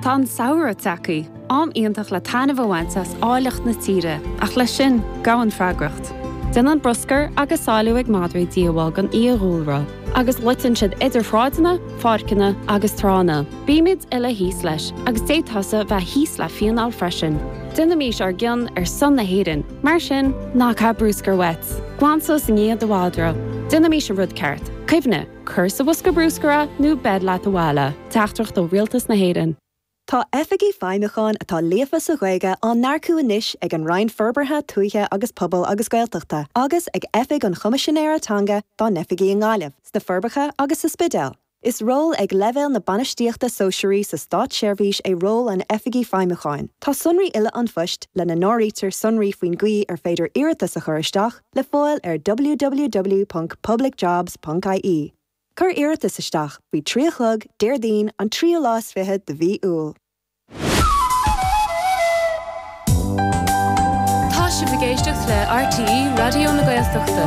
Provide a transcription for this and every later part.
Tá an samhradh tagtha, am iontach le taitneamh a bhaint as áilleacht na tíre, ach leis sin, gabhann freagracht. Déanann bruscar agus salú ag madraí díobháil don fhiadhúlra, agus loiteann siad idir shráideanna, pháirceanna agus tránna. Bímid uile thíos leis, agus d'fhéadfadh tusa bheith thíos le fíneáil freisin. Déanaimís ár gcion ar son na hÉireann, mar sin, ná caith bruscar uait. Glan suas i ndiaidh do mhadra. Déanaimís an rud ceart. Cuimhnigh. Cuir sa bhosca bruscair é nó beir leat abhaile. Teachtaireacht ó Rialtas na hÉireann. Tá Oifigigh Feidhmiúcháin atá líofa sa Ghaeilge á n-earcú anois ag an Roinn Forbartha Tuaithe agus Pobail agus Gaeltachta agus ag Oifig an Choimisinéara Teanga dá n-oifigí i nGaillimh, sna Forbacha agus sa Spidéal. Is ról ag leibhéal na bainistíochta sóisearaí sa státseirbhís é ról an Oifigigh Feidhmiúcháin. Tá sonraí uile an phoist, lena n-áirítear sonraí faoin gcaoi ar féidir iarratas a chur isteach, le fáil ar www.publicjobs.ie. Cuir iarratas isteach faoi trí a chlog Déardaoin an tríú lá is fiche de mhí Iúil. Tá sibh ag éisteacht le RTÉ Raidió na Gaeltachta.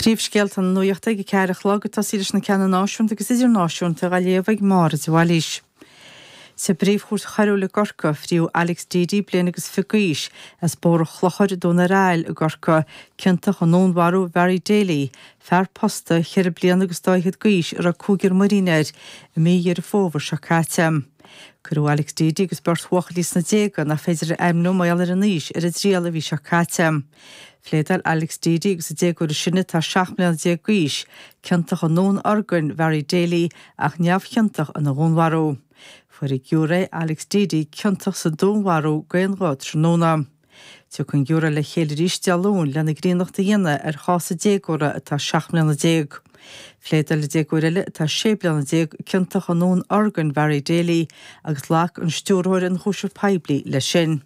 Príomhscéalta na Nuaíochta ag a ceathair a chlog, ag tosaí leis na ceanna náisiúnta agus idirnáisiúnta á léamh ag Máire de Bhailís. Sa bPríomhchúirt Choiriúil i gCorcaigh, fríodh Alex Deady, bliain agus fiche d'aois, as Bóthar an Chlochair, Dún ar Aill, i gCorcaigh, ciontach i ndúnmharú Bharry Daly, fear posta, ceithre bliana agus dá fhichead d'aois, a raibh cúigear muirín air, i mí Dheireadh Fómhair seo caite. Cuireadh Alex Deady agus beirt bhuachaillí sna déaga, nach féidir a ainmniú mar gheall ar a n-aois, ar a dtriail an mhí seo caite. Phléadáil Alex Deady agus an déagóir is sine, atá 17 mbliana d'aois, ciontach i ndúnorgain Bharry Daly ach neamhchiontach ina dhúnmharú. Fuair an giúiré Alex Deady ciontach sa dúnmharú d'aon ghuth tráthnóna. Tiocfaidh an giúiré le chéile arís Dé Luain lena gcríonnacht a dhéanamh ar chás an déagóra atá 17 mbliana. Phléadáil an déagóir eile atá 16 bliana ciontach i ndúnorgain Bharry Daly agus ghlac an Stiúrthóir Ionchúiseamh Poiblí leis sin.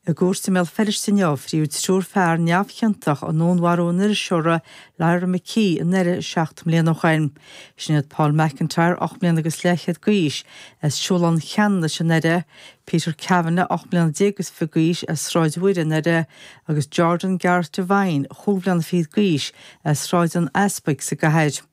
I gcúirt i mBéal Feirste inniu, fríodh triúr fear neamhchiontach i ndúnmharú an iriseora Lyra McKee i nDoire seacht mbliana ó shin. Sin iad Paul McIntyre, ocht mbliana agus leathchéad d'aois, as Siúlán Cheanannais i nDoire, Peter Cavanagh, ocht mbliana déag agus fiche d'aois, as Sráid Mhuire i nDoire, agus Jordan Gareth Devine, chúig bhliana fichead d'aois, as Sráid an Easpaig sa gcathair.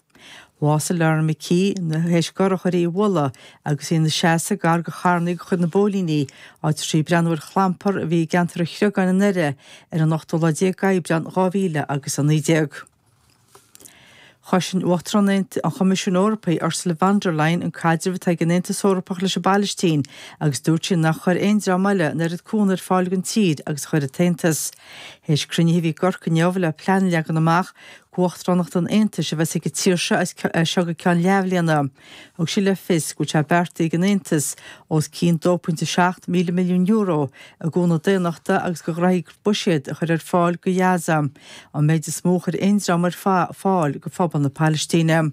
Bhásaigh Lyra McKee théis go urchar í a bhualadh agus í ina seasamh gar go charrannaí go chuid na bpóilíní, áit a raibh sí ag breathnú ar chlampar a bhí i gceantar An Chreagáin i nDoire ar an ochtú lá déag d'Aibreán dhá mhíle agus a naoi déag. Chosain Uachtarán an Choimisiúin Eorpaigh Ursula von der Leyen an caidreamh atá ag an Aontas Eorpach leis an bPalaistín agus dúirt sí nach chuir aon dream eile an oiread cúnamh ar fáil don tír agus a chuir an tAontas. Théis cruinnithe a bhí i gCorcaigh inniu le plean a leagan amach Uachtaránacht an Aontais a bheas ag an tír seo as seo go ceann leathbhliana. Thug sí le fios go bhfuil sé beartaithe ag an Aontas os cionn 2.7 míle milliún euro i gcúnamh daonnachta agus go gcruthfaidh buiséad a chur ar fáil go Ghaza, an méid is mó a chuir aon dream ar fáil go phobal na Palaistíne.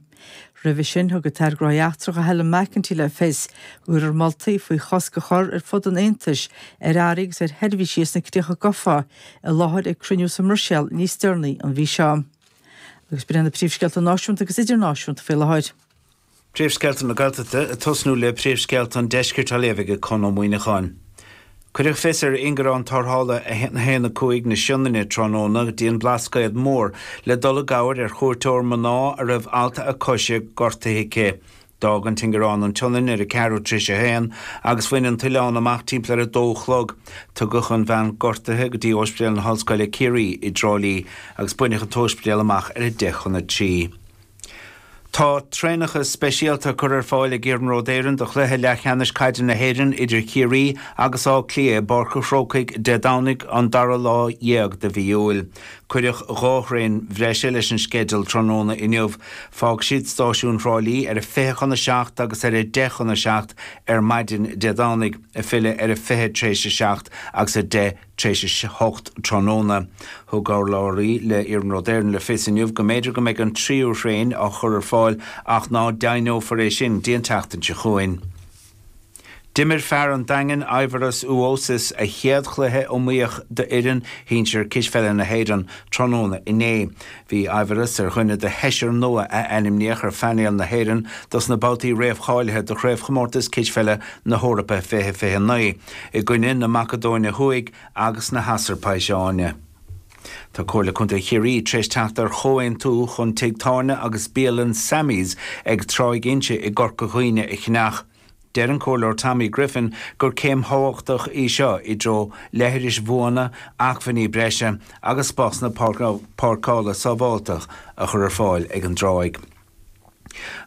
Roimhe sin, thug an tAire Gnóthaí Eachtracha Helen McEntee le fios go gcuirfear moltaí faoi chosc a chur ar fud an Aontais ar earraí agus ar sheirbhísí as na Críocha Gofa i láthair ag cruinniú sa mBruiséil níos deireanaí an mhí seo. Agus breith na príomhscéalta náisiúnta agus idirnáisiúnta faoi láthair. Príomhscéalta na Gaeltachta ag tosnú le príomhscéalta an deiscirt á léamh ag Conn Ó Muíneacháin. Cuireadh fios ar ingearán tarrthála 115 na Sionainne tráthnóna go dtí an Blascaod Mór le dul i gcabhair ar chuairteoir mná a raibh alt a coise gortaithe aici. D'fhág an t-ingearán an tSionainn ar a ceathrú tréis a haon agus bhain an t-oileán amach timpeall ar a 2 a chlog. Tugadh an bhean gortaithe go dtí Óispidéal na hOllscoile Ciarraí i dTrá Lí agus baineadh an t-óispidéal amach ar a 10 chun a trí. Tá traenacha speisialta á gcur ar fáil ag Iarnród Éireann do chluiche leathcheannais caide na hÉireann idir Ciarraí agus Áth Cliath i bPáirc an Chrócaigh Dé Domhnaigh an dara lá déag de mhí Iúil. Cuireadh dhá thraein bhreise leis an sceideal tráthnóna inniu. Fágfaidh siad stáisiún Thrá Lí ar a fiche chun a seacht agus ar a deich chun a seacht ar maidin Dé Domhnaigh, ag filleadh ar a fiche tréis a seacht agus a deich Tar éis a 8 tráthnóna. Thug urlabhraí le Iarnród Éireann le fios inniu go mb'fhéidir go mbeidh an tríú thraein á chur ar fáil ach ná deimhneofar é sin dtí an tseachtain seo chugainn. D'imir fear an Daingin, Aivaras Uosis, a chéad chluiche iomaíoch d'fhoireann shinsir cispheile na hÉireann tráthnóna inné. Bhí Aivaras ar dhuine de sheisear nua a ainmníodh ar phainéal na hÉireann dos na babhtaí réamhcháilithe do Chraobhchomórtas Cispheile na hEorpa 2029. i gcoinne na Macadóine Thuaidh agus na hAsarbaiseáine. Tá Comhairle Contae Chiarraí tar éis teacht ar chomhaontú chun tigh tábhairne agus bialann Sammy's ag Tráigh Inse i gCorca Dhuibhne a cheannach. Deir an Comhairleoir Tommy Griffin gur céim thábhachtach í seo i dtreo leithris bhuana, acmhainní breise agus spásanna páirceála sábháilte a chur ar fáil ag an dtráigh.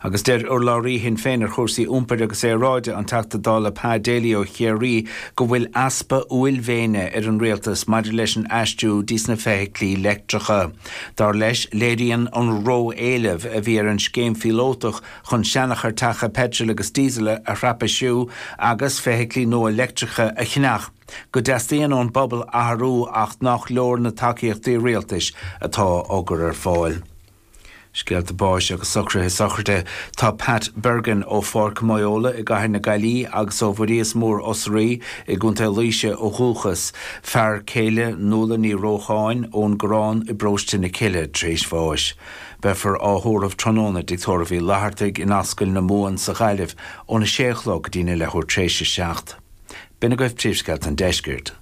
Agus deir urlabhraí Shinn Féin ar chúrsaí iompair agus aeráide, an Teachta Dála Pa Daly ó Chiarraí, go bhfuil easpa uaillmhéine ar an rialtas maidir leis an aistriú dtí's na feithiclí leictreacha. Dar leis, léiríonn an ró-éileamh a bhí ar an scéim phíolótach chun seanachairteacha peitril agus díosail a scraipeáil agus feithiclí nua leictreacha a cheannach go dteastaíonn ón bpobal athrú ach nach leor na tacaíochtaí rialtais atá á gcur ar fáil. Scéalta báis agus socruithe sochraide. Tá Pat Bergin ó Pháirc Moyola i gCathair na Gaillimhe agus ó Bhuiríos Mór Osraí i gContae Laoise ó dhúchas. Fear céile Nuala Ní Rócháin ón gCorrán i bParóiste na Cille tar éis bháis. Beifear á thórramh tráthnóna i dTigh Tórraimh Uí Fhlathartaigh in Ascaill na Mumhan sa Ghaillimh óna 6 a chlog go dtína leathuair tar éis a seacht. B'in agaibh príomhscéalta an deiscirt.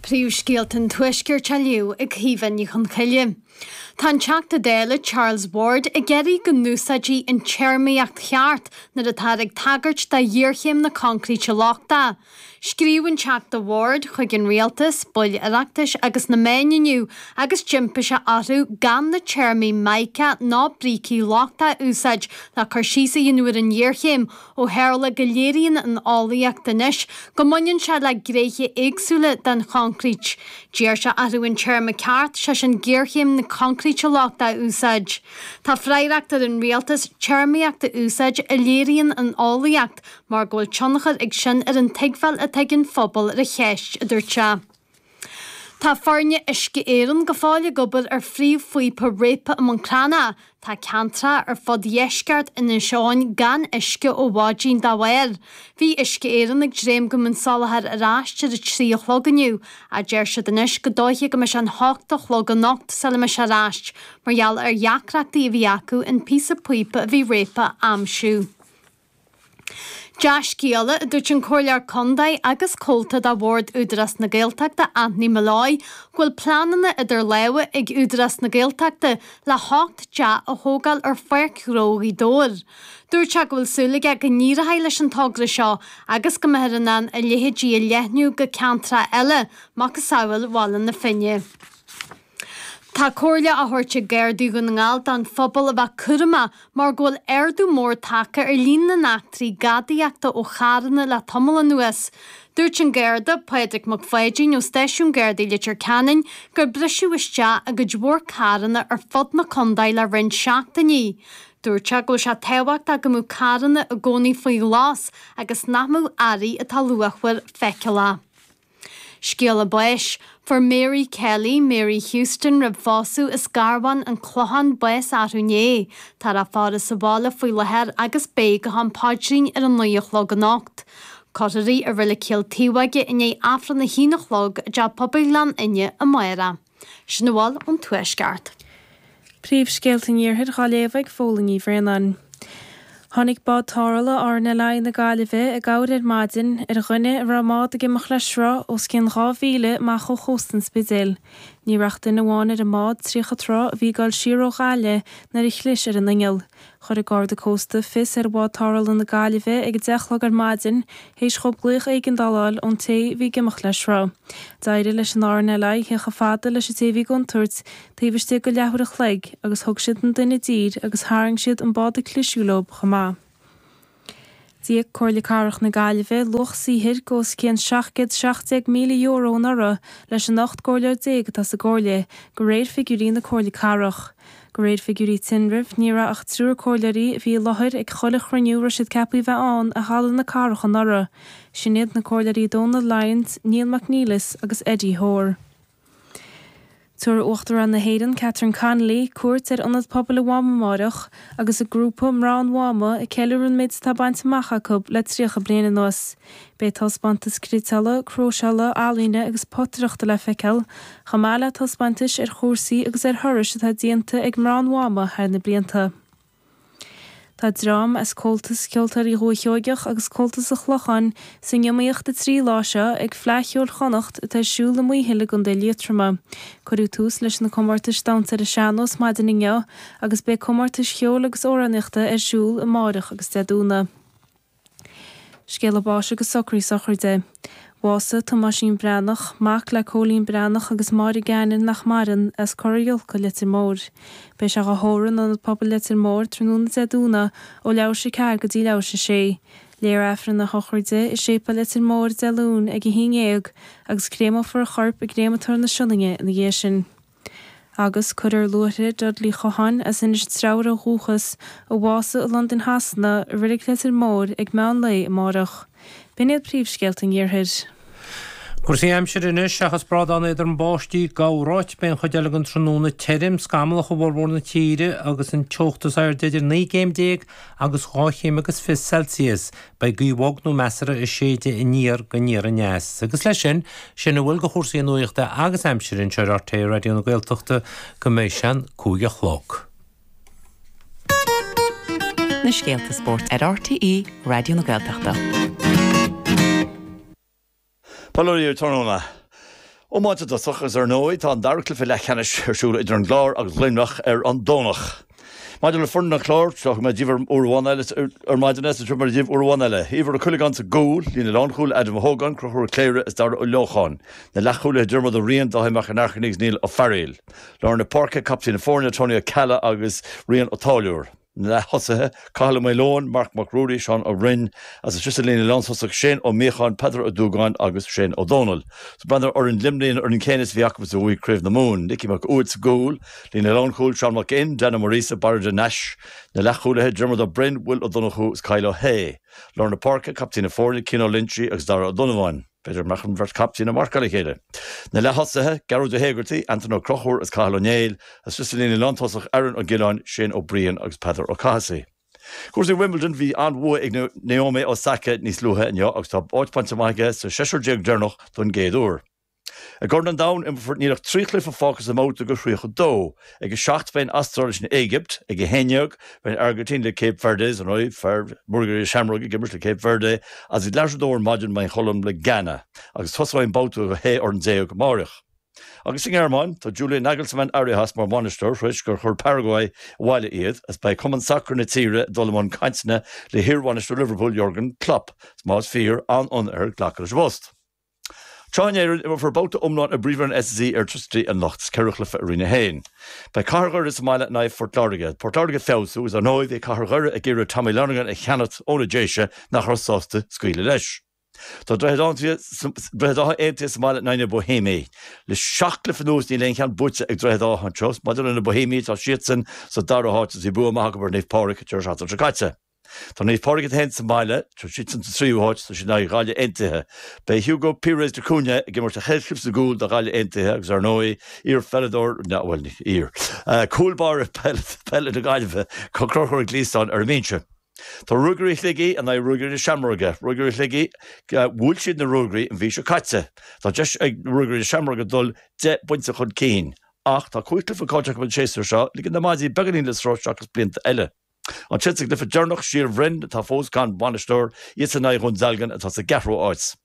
Príomhscéalta an Tuaiscirt á léamh ag Caoimhe Ní Chonchoille. Tá an Teachta Dála Charles Ward ag iarraidh go n-úsáidfí an téarmaíocht cheart nuair atáthar ag tagairt do ghéarchéim na coincríte lochtaí. Scríobh an Teachta Ward chuig an Rialtas, baill Oireachtais agus na meáin inniu agus d'impigh sé orthu gan na téarmaí 'mica' ná 'brící lochtacha' a úsáid le cur síos a dhéanamh ar an ngéarchéim Ó tharla go léiríonn an eolaíocht anois go mbaineann sé le gréithe éagsúla den choncrít, d'iarr sé orthu an téarma ceart, sé sin géarchéim na coincríte lochtaí, a úsáid. Tá freagracht ar an rialtas téarmaíocht a úsáid a léiríonn an eolaíocht mar go bhfuil tionchar ag sin ar an tuigbheáil atá ag an phobal ar an cheist, a dúirt sé. Tá foirne Uisce Éireann go fóill ag obair ar phríomhphíopa réabtha i mBun Cranncha. Tá ceantracha ar fud dheisceart Inis Eoghain gan uisce ó mhaidin dá bharr. Bhí Uisce Éireann ag dréim go mbeadh an soláthar ar ais ar a trí a chlog inniu ach deir siad anois go dóiche go mbeidh sé an hocht a chlog anocht sula mbeidh sé ar ais mar gheall ar dheacrachtaí a bhí acu an píosa píopa a bhí réabtha a aimsiú. Dea-scéala, a dúirt an Comhairleoir Contae agus comhalta de Bhord Údarás na Gaeltachta Anthony Molloy, go bhfuil pleananna idir lámha ag Údarás na Gaeltachta le hocht dteach a thógáil ar Pháirc Ghnó Ghaoth Dobhair. Dúirt sé go bhfuil súil aige go n-éireodh leis an togra seo agus go mbeifear in ann a leithéidí a leathnú go ceantracha eile, macasamhail Bhaile na Finne. Tá comhairle á thabhairt ag Gardaí Dhún na nGall don phobal a bheith cúramach mar go bhfuil ardú mór tagtha ar líon na n-eachtraí gadaíochta ó charranna le tamall anuas. Dúirt an Garda, Pádraig Mac Pháidín ó Stáisiún Gardaí Leitir Ceanainn gur briseadh isteach i gcuid mhór carranna ar fud na contae le roinnt seachtainí. Dúirt sé go bhfuil sé tábhachtach go mbeadh carranna i gcónaí faoi ghlas agus nach mbeadh earraí atá luachmhar feiceálach. Scéala báis, Fuair Mary Kelly, Mary Houston roimh phósadh as Garbhán an Clochán bás arú inné. Tá a faire sa bhaile faoi latháir agus beidh go ham paidrín ar a naoi a chlog anocht. Cuirfear í i roilig Chill Taobhóige i ndiaidh Aifreann a haon a chlog i dteach pobail Ghleann Fhinne amárach. Sin a bhfuil ón Tuaisceart. Príomhscéalta an Iarthair dhá léamh ag Póilín Ní Bhraonáin. Tháinig bád tarrthála RNLI na Gaillimhe i gcabhair ar maidin ar dhuine a raibh an bád ag imeacht le sruth os cionn dhá mhíle amach ó chósta an Spidéil. Ní raibh ach duine amháin ar an mbád, 30 troigh, a bhí ag dul siar ó Ghaillimh nuair a chlis ar an inneall. Chuir an Garda Cósta fios ar bhád tarrthála na Gaillimhe ag a deich a chlog ar maidin théis dhóibh glaoch éigeandála a fháil ón té bhí ag imeacht le sruth. D'éirigh leis an RNLI theacht a fhad leis an té bhí i gcontúirt taobh istigh de leathuair a chloig agus thug siad an duine i dtír agus tharraing siad an bád a chlis air leob chomh maith. D'íoc Comhairle Cathrach na Gaillimhe luach saothair go os cionn €717,000 anuraidh leis an 18 gcomhairleoir atá sa gComhairle, go réir figiúirí na Comhairle Cathrach. Go réir figiúirí tinrimh, ní raibh ach triúr comhairleoirí a bhí i láthair ag chuile chruinniú a raibh siad ceapaí a bheith ann i Halla na Cathrach anuraidh. Sin iad na comhairleoirí Dónal Lyons, Níall McNelis agus Eddie Hoare. Tabharfaidh Uachtarán na hÉireann Catherine Connolly cuairt ar Ionad Pobail an Mháma amárach agus an grúpa Mná an Mháma ag ceiliúradh an méid atá bainte amach acu le 30 bliain anuas. Beidh taispeántas criotála, cróiseála, ealaíne agus potaireachta le feiceáil, chomh maith le taispeántais ar chúrsaí agus ar thurais atá déanta ag Mná an Mháma thar na blianta. Tá dream as Comhaltas Ceoltóirí Dhúiche Sheoigheach agus Comhaltas an Chlocháin san iomaíocht na trí lá seo ag Fleadh Cheoil Chonnacht atá ar siúl i Maothail i gContae Liatroma. Cuireadh tús leis na comórtais damhsa ar an sean-nós maidin inniu agus beidh comórtais cheoil agus amhránaíochta ar siúl amárach agus Dé Domhnaigh. Scéala báis agus socraí sochraide. Bhásaigh Tomáisín Breathnach, mac le Cóilín Breathnach agus Máire Geanann, nach maireann, as Corr Fhiolcadh, Leitir Móir. Beidh sé á thóradh in Ionad Pobail Leitir Móir tráthnóna Dé Domhnaigh ó leath théis a ceathair go dtí leath théis a sé. Léifear Aifreann na sochraide i Séipeal Leitir Móir Dé Luain ag a haon dhéag agus créamófar a chorp i gCréamatóir na Sionainne ina dhiaidh sin. Agus cuirfear luaithre Dudley Chotháin as Inis Treabhair ó dhúchas, a bhásaigh i Londain Shasana, i Reilig Leitir Móir ag meán lae amárach. B'in iad príomhscéalta an Iarthair. Cúrsaí aimsire anois. Seachas brádán éadrom báistí, i gcorráit, beidh an chuid eile den tráthnóna tirim, scamallach i bhformhór na tíre agus an teocht is airde idir naoi gcéim déag agus dhá chéim agus fiche Celsius. Beidh gaoth bhog nó measartha ag séideadh aniar go aniar aneas. Agus leis sin, sin a bhfuil de chúrsaí nuachta agus aimsire anseo ar RTÉ Raidió na Gaeltachta go mbeidh sé an cúig a chlog. Na scéalta spóirt ar RTÉ Raidió na Gaeltachta. Bail ó Dhia oraibh tráthnóna. Iomáint i dtosach agus ar ndóigh tá an dara cluiche leathcheannais ar siúl idir an gClár agus Luimneach ar an Domhnach. Maidir le foireann an Chláir, thug mé daoibh uair amháin eile ar maidin é is tabharfaidh mé daoibh uair amháin eile. Éibhear Ó Cuileagáin sa gcúl, líne lánchúil Adam Ó hÓgáin, Conchúr Ó Cléirigh is Dara Ó Leocháin. Na leathchúlaithe Diarmuid Ó Riain, Dáithí Mac An Airchinnigh is Niall Ó Fearaíl. Lár na páirce, Captaen na foirne Tony Ó Ceallaigh agus Rian Ó Táilliúir. Na leath-thosaithe, Cathal Ó Maoileoin, Marc Mac Ruairí, Seán Ó Rinn, is istigh sa líne lántosach, Shane Ó Miacháin, Peadar Ó Dúgáin agus Shane Ó Domhnaill. Is ag breathnú ar fhoireann Luimnigh an fhoireann céanna is a bhí acu is a bhuaigh Craobh na Mumhan, Nicky Mac Uaid sa gcúl, líne lánchúil, Seán Mac Fhinn, Dan Ó Muiríosa, Barra de Nais, Na leath-chúlaithe, Diarmuid Ó Broin, Will Ó Donnchú is Kyle Ó hAodha. Lár na páirce, Captaen na foirne, Cian Ó Loinsigh agus Dara Ó Donnabháin. B'fhéidir go mbeadh an bheirt captaen ag marcáil a chéile. Na leath-thosaithe, Gearóid Ó hÉigeartaigh, Aidan Ó Conchúir agus Cathal Ó Néill, is istigh sa líne lántosach Aaron Ó Giolláin, Shane Ó Briain agus Peadar Ó Cathasaigh. Cúrsaí Wimbledon, Bhí an-bhua ag Naomi Osaka níos luaithe inniu agus tá áit bainte amach aici sa seisear déag deireanach don gcéad uair. I gCorn an Domhain, imreofar níl ach trí chluiche fágtha sa mbabhta de 32. Ag a seacht beidh an Astráil leis an Éigipt, ag a haon dhéag beidh an Airgintín le Cape Verde, is ar ndóigh fear Ruagairí na Seamróige ag imirt le Cape Verde, agus ag leathuair a dó ar maidin beidh an Cholóim le Ghana, agus tosóidh an babhta de shé fhoireann déag amáireach. Agus sa nGearmáin, tá Julian Nagelsmann éirithe as mar bhainisteoir th'réis gur chuir Paraguay abhaile iad, agus beidh cumann sacair na tíre ag dul i mbun cainteanna le hiarbhainisteoir Liverpool Jurgen Klopp, is más fíor, an-fhonn air glacadh leis an bpost. Sraith na hÉireann, imreofar babhta iomlán i bPríomhroinn an SSE Airtricity anocht. Is ceithre chluiche i Roinn 1. Beidh cathair Dhoire sa mbaile in aghaidh Phort Láirge. Port Láirge ag feabhsú is ar ndóigh bhí cathair Dhoire ag iarraidh Tommy Lonergan a cheannacht ó na Déise nach raibh sásta scaoileadh leis. Tá Droichead Átha Aontaithe sa mbaile in aghaidh na Boihéimigh. Le seacht gcluiche anuas níl aon cheann buaite ag Droichead Átha anseo. Maidir lena Boihéimigh tá siadsan sa dara háit agus bhí bua maith acu ar Naomh Pádraig an deireadh seachtaine seo caite. Tá Naomh Pádraig féin sa mbaile. Tá siadsan sa tríú háit is iad in aghaidh Ghaillimh Aontaithe. Beidh Hugo Pires da Cunha ag imirt a chéad chluiche sa gcúl do Ghaillimh Aontaithe agus ar ndóigh iar pheileadóir, bhuel ní iar, cúl báire peile na Gaillimhe, Conchúr Ó Gliasáin ar an mbinse. Tá Ruagairí Shligigh in aghaidh Ruagairí na Seamróige. Ruagairí Shligigh, bhuail siad na Ruagairí an mhí seo caite. Tá deis ag Ruagairí na Seamróige dul deich bpointe chun cinn. Ach tá cúig chluiche caillte acu an séasúr seo, ligean na maidí beagáinín le sruth seachas blianta eile. Ansin sa gcluiche deireanach Síol Bhroin atá fós gan bhainisteoir, iadsan in aghaidh Dhún Dealgan atá sa gceathrú háit.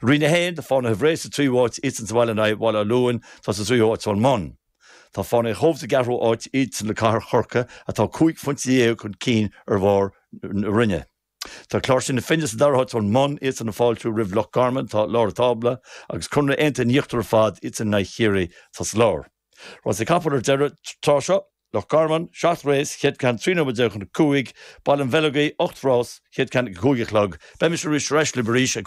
Roinn 1, Tá Fánaithe Bhré sa tríú háit, iadsan sa bhaile in aghaidh Bhaile Átha Luain atá sa tríú háit ón mbun. Tá Fánaithe an Chóibh sa gceathrú háit, iadsan le Cathair Chorcaí atá cúig phointe dhéag chun cinn ar bharr na roinne. Tá Cláirsigh na Finne sa dara háit ón mbun, iadsan ag fáiltiú roimh Loch Garman atá i lár an tábla agus Conradh Aontaithe in íochtar ar fad, iadsan in aghaidh Chiarraí atá sa lár. Rásaí capall ar deireadh tráth seo. Loch Garman, seacht rás, chéad ceann trí nóiméad déag chun a cúig, Baile an Bheileogaigh, ocht rás, chéad ceann ag a cúig a chlog, Beidh mise arís ar ais libh arís ag